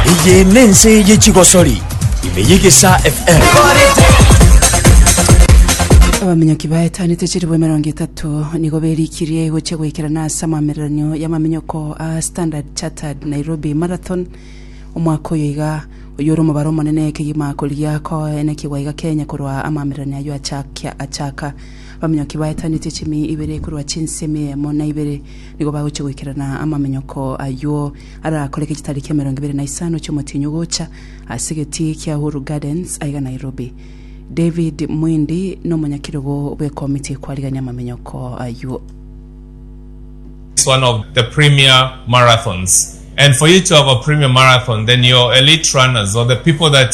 Eye nense ye chigosori ime yegesa FM. abamenyoki ba etani tochiribwa emerongo etato nigo berikirie gochia goikerana ase amamereranio y'amaminyoko a standard chartered nairobi marathon omwaka oyo iga oyio ore omobaro omonene ekegima korigia koenekigwa iga kenya korwa amamererano ayio achakia achaka abamenyoki ba etani tochimi ibere korwa chinsemi eyemo na ibere Nigo bagochia goikerana amamenyoko ayio arakore gechitariki emerongo ebere na isano chi'omotienyi gocha ase egetii kia Uhuru Gardens aiga Nairobi. David Mwindi nomonyakerogo bw'ekomiti ekwarigania amamenyoko ayio. It's one of the premier marathons and for you to have a premier marathon then your elite runners or the people that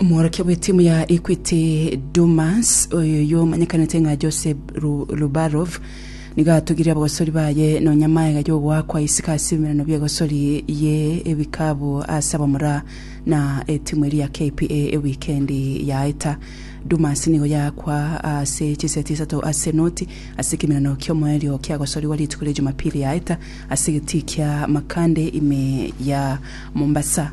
Omworokia bw'etimu ya Equity Dumas oyo omanyekanete ng'a Josep Lu- Lubarov nigo atogirie abagosori baye nonya maega y'ogoakwa isiko ase ebimerano bi'egosori ye ebikabu ase abamura na etimu eria ya KPA ewikendi yaeta. Dumas nigo yaakwa ase chiseti isato ase enoti ase ekemerano ki'omoerio kiagosorigwa rituko ria Jumapili yaeta ase egetii kia Makande ime ya Mombasa.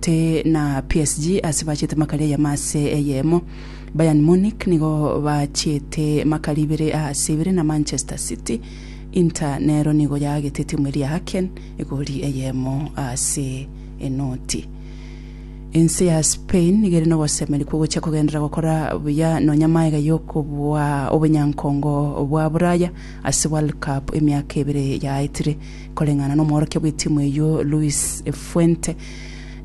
Te na PSG ase bachiete makari ayemo ase eyemo. Bayern Munich nigo bachiete makari ibere aase ibere na Manchester City. Inter nero nigo yaagete etimu eria Haken egori eyemo aase enoti. Ense ya Spain nigo ere nogosemeria kogochia kogenderera gokora buya nonya maega yokobua obonyankongo bwa Buraya ase World Cup emiaka ebere yaetire. Koreng'ana nomworokia bw'etimu eyio Luis Fuente,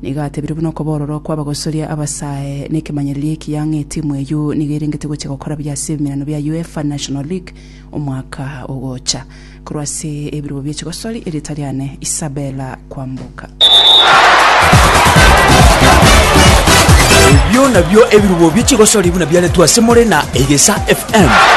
nigo atebirie buna okoborora okwo abagosoria abasae nekemanyererio ekiya ng'a etimu eyio nigo erengete gochia gokora buya ase ebimerano bia UEFA National League omwaka ogocha. Korwa ase ebirobo bie chigosori, erieta riane Isabella Kwamboka. Ebio nabio ebirobo bie chigosori buna biaretwe ase more na Egesa FM.